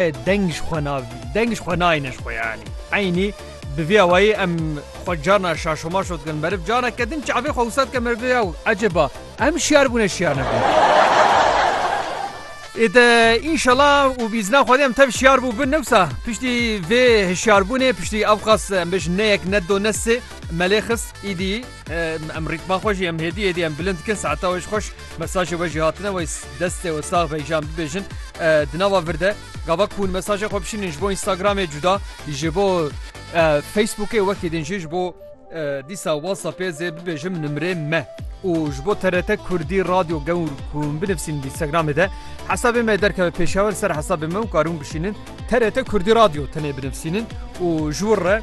Deng ji xwe na deng ji xwe nayêne ji xwe yanî eynî bi vî awayî em xwe carna şaşomaşo dikin meriv careke din çavê xwe wisa dike merivê yaw ecêba em şiyar bûne şiyar nebûne ê de înşela û bi îzna xwedê em tev şiyar bû bin newsa piştî vê hişyarbûnê piştî ewqas em bêjin ne yek ne do ne sê melê xist îdî Em rîtma xwe jî em hêdî hêdî em bilind dikin saeta wê ji xweş mesajê we jî hatine wê destê wê sax be jam bibêjin di nava vir de gava ku hûn mesajê xwe bişînin ji bo Instagramê cuda ji bo Facebookê wekî din jî ji bo dîsa WhatsAppê zê bibêjim nimrê me. û ji bo TRT Kurdî radyo gewr ku binivîsîn Instagramê de hesabê me derkeve pêşewer ser hesabê me û karin bişînin TRT Kurdî radyo tenê binivîsînin û ji wir re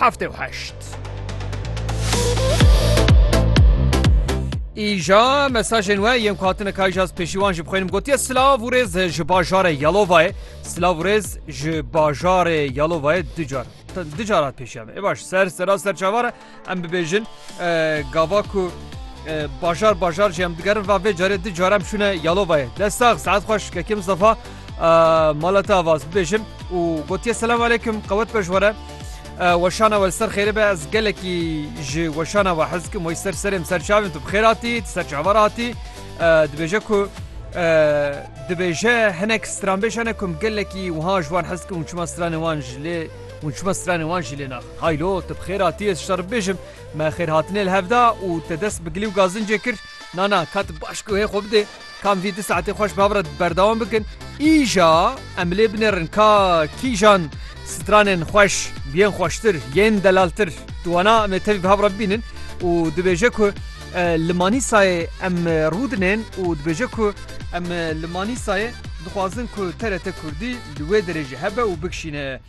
heftê û heşt. Îja mesajên we yên ku hatine kayjaz pêşî wan jî bixwînim gotiye silav û rêz ji bajarê Yalovayê silav rêz ji bajarê Yalovayê ducar ducar hat pêşiya me ê baş ser sera ser çavara em bibêjin gava ku bajar bajar jî em digerin va vê carê di carem şûne Yalovayê destax saet xweş kekê Mustafa Mala te avaz bibêjim û gotiye selam aleykum qewet be ji were. Weşana we ser xêri be ez gelekî ji weşana we hez kim wey ser serêm ser çavên tu bixêr hatî ser çavar hatî dibêje ku dibêje hinek stranbêj hene kum gelekî wiha ji wan hez kim û çima stranê wan ji lê û çima stranê wan jî lê nax haylo tu bixêr hatî ez şer bibêjim me xêr hatinê li hevda û te dest bi gilî û gazincê kir nana kat baş ku hê xwe bidê. Kam vî di saetê xweş ba bira berdewam bikin. Îja em bilê binêrin ka kîjan stranên xweş yên xweştir yên delaltir tu wana em ê tevî biha bira bibînin û dibêje ku li Manîsayê em rûdinên û dibêje ku em li Manîsayê dixwazin ku TRT Kurdî li wê derê jî hebe û bikişîne.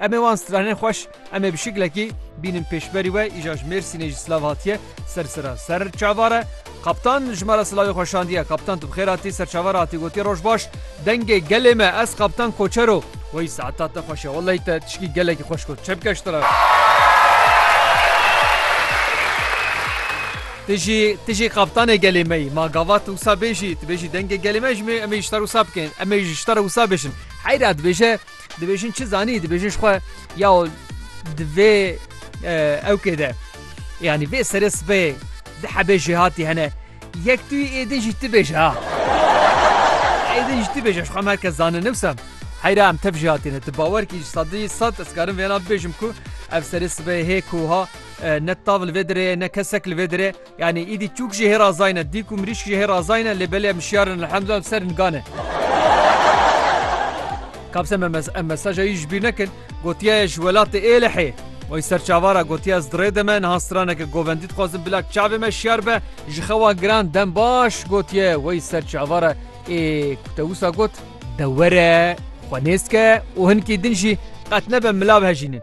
Em ê wan stranên xweş em ê bi şiklekî bînin pêşberî we îja ji Mêrsînê jî silav hatiye ser sira ser çavar e. Kaptan ji me re silavê xwe şandiye. Kaptan tu bi xêr hatî ser çavar hatî gotiye roj baş. Dengê gelê me ez kaptan koçero. Wey saeta te xweş e wellahî te tişkî gelekî xweş got çep keş te re. Ti jî ti jî kaptanê gelê me yî. Ma gavat wisa bêjî, tu bêjî dengê gelê me ji me em ê ji te re wisa bikin. Em ê ji te re wisa bêjin. Heyra dibêje Dibêjin çi zanî dibêjin xwe ya di vê ewkê de yanî vê serê sibê di hebê jê hatî hene yek tu êdin jî tibêje ha êdin jî tibêje xwe merkez zanin newsa heyra em tev jê hatîne tu bawer kî sadî sat ez karim vêna bêjim ku ev serê sibê hê ku ha ne tavil vê dirê ne kesek li vê dirê Yanî îdî çûk jî hê razayî ne, dîk û mirîşk jî hê razayî ne lê belê em şiyar in elhemdulillah ser in gan e. Kabse me mes em mesaja wî ji bîr nekin, gotiya ye ji welatê Êlihê. Wê ser çavan ra gotiya ez di rê de me niha straneke govendî dixwazim bila çavê me şiyar be ji xewa giran dem baş gotiye wê ser çavan ra ê ku te wisa got de were xwe nêz ke û hinkî din jî qet nebe milav hejînin.